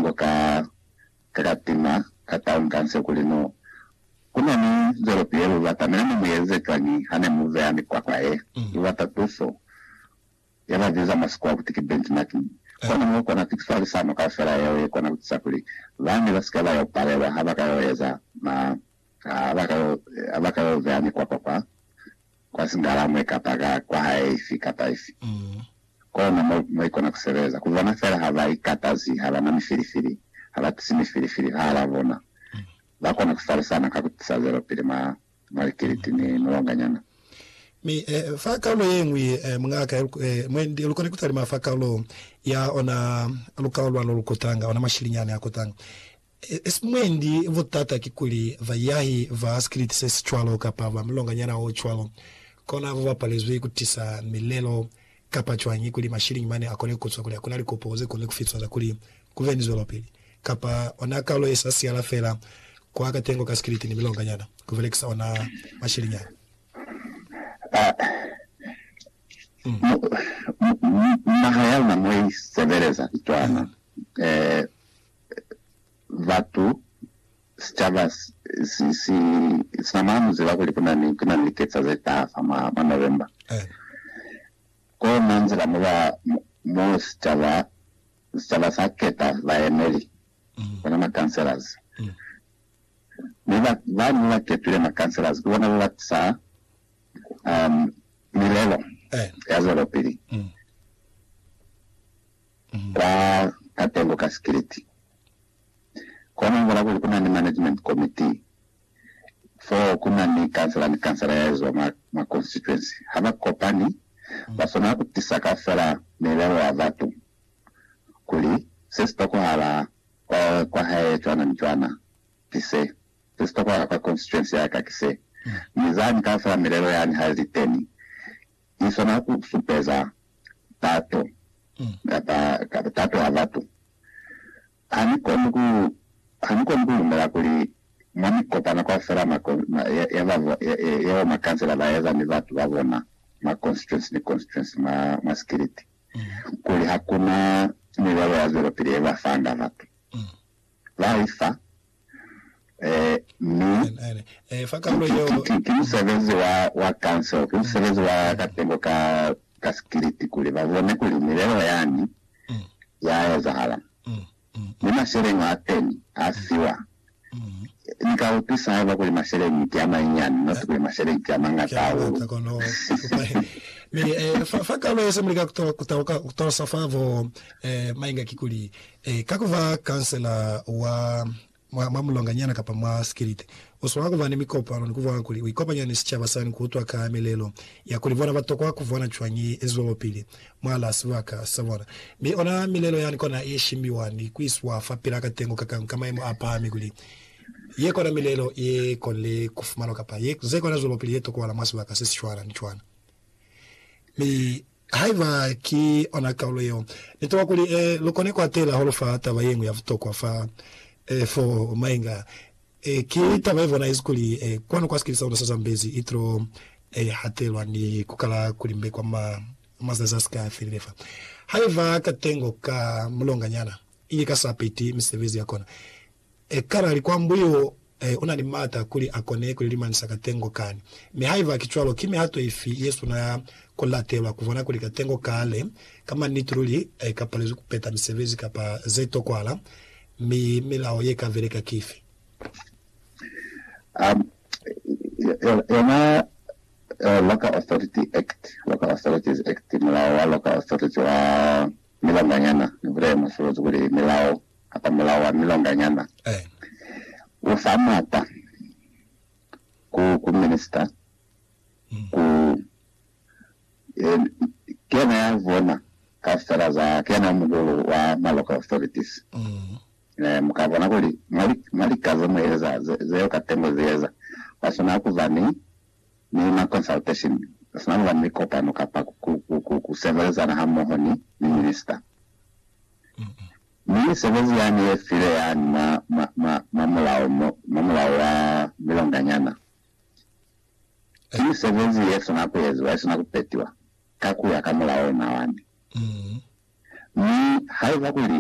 Ngo ka katima ka taun ka nse kuli no kuna ni nzwelopi ye lu batamela ne mu eze cwañi ha ne mu vea mikwakwa ye lu bata tuso ye ba biza mwa Sikhuwa kuti ki benchmarking? Kono mo kona pikifalisano kaufela yeo ye kona ku tisa kuli ba ne ba si ke ba yo palelwa ha ba ka yo eza ma Ha ba ka yo beha mikwapa kwa, kwa singala mwe kapa ka kwa hae ifi kapa ifi, kona mo, mo i kona ku sebeza. Ku bona fela ha ba ikatazi, ha ba na mifilifili, ha ba tisi mifilifili fahal'a bona, ba kona ku falisana ka ku tisa zwelopili mwa, mwa likiliti ni mulonganyana. Mi, fa kalulo ye ñwi, mungaka, ya lu, mwe ndi lu kone ku talima fa kalulo ya ona lukao lwa lo lu kotanga, ona mashilinyani a kotanga. Mwendi butata kikuli baiyahi ba sikiliti se si cwalo kapa ba mulonganyana o cwalo kona ba bapalezwi ku tisa milelo kapa cwañi kuli mashiliñi mane a kone ku zwa kuli ha ku na likopo ze koni ku fitwa za kuli ku be ni zwelopili kapa ona kalo ye sa siyala fela kwa katengo ka sikiliti ni milonganyana ku belekisa ona mashiliñi ao. Naha ya luna mo i sebeleza cwana. batu, sicaba sinamana muziba kuli kunani kunani liketsa zetaha fa mwa mwa November. Kona nzila moba mo sicaba sicaba sa keta baemeli, bona ma councillors. Mi ba bani baba ketwile ma councillors ki bona baba tisa milelo ya zwelopili. Ba tatelwa ka sikiliti. Kona ubona kuli kuna ni management committee fo kuna ni kansela ni kansela ya ezwa mwa mwa constituency. Ha ba kopani, ba swanela ku tisa kaufela milelo ya batu kuli se si tokohala kwa kwa hae cwana ni cwana ki se, se si tokohala kwa constituency ya ka ki se. Mi zani kaufela milelo yani ha li teni, i swana ku supeza tato kapa tato ya batu. Ha ni koni ku, ha ni koni ku lumela kuli mwa mikopano kaufela ma, ma, ya, ya ba, ya, ya bo makansela ba eza ni batu ba bona mwa constituency ni constituency mwa, mwa sikiliti, kuli ha ku na milelo ya zwelopili ye ba fanga batu. Laifa, ee, mi ki, ki, ki musebezi wa, wa council, ki musebezi wa katengo ka, ka sikiliti kuli ba bone kuli milelo yani ya ezahala. Mi masheleñi a teni a fiwa. Ni ka utwisa haiba kuli masheleñi ki a manyinyani, not kuli masheleñi ki a mañata hahulu. Mi, ee, fa, fa kalo ye se muli ka ku tolosa fa bo, ee, mainga kikuli, Ee, ka ku ba kansela wa mwa, mwa mulonganyana kapa mwa sikiliti, u swanela ku ba ni mikopano ni ku bona kuli u ikopanya ni sicaba sani ku utwa ka milelo ya kuli bona ba tokwa ku bona cwañi i zwelopili mwalaa sibaka sa bona. Mi ona milelo yani kona i shimbiwa ni ku iswa fapilaa ka tengo ka kañi ka maimo a pahami kuli ye kona milelo ye konile ku fumanwa kapa ye, ze kona zwelopili ye tokohala mwa sibaka se si cwana ni cwana. Mi. Haiba ki ona kaulo yeo, nitola kuli e, lukone kuatela hahulu fa taba yeñwi ya butokwa fa e, fo mainga a e, ki taba ye bonahezi kuli e, kwanu kwa sikili sa luna sa Zambezi itilo e, hatelwa ni kukala kulimbe kwa ma, mazazi a sika felile fa. Haiba katengo ka mulonganyana ili ka sa peti misebezi yakona, Ekana likwambu yeo e na ni maata kuli a kone ku li limanisa katengo kani? Mi haiba ki cwalo, ki mihato ifi ye swanela ya ku latelwa ku bona kuli katengo kale ka maniti luli ka palezwi ku peta misebezi kapa ze tokwahala, mi milao ye ka beleka ki ifi? A Yona Local Authority Act, Local Authorities Act, Mulao wa Local Authority wa Milonganyana, ni bulele musolozi kuli milao kapa mulao wa milonganyana u fa maata ku, ku minista, ku, e, ki yena ya bona kaufela za, ki yena muhulu wa ma local authorities. E, mu ka bona kuli mwa li, mwa lika ze mu eza, ze, zeo katengo ze eza, wa swanela ku ba ni Milima Consultation, sina kuba ni likopano kapa ku sebelezana hamoho ni minisita. Mi misebezi yani ye file yani mwa mulao wa milonganyana, ki misebezi ye sina ku eziwa, ye sina ku petiwa ka kuya ka mulao ona wani. Mi haiba kuli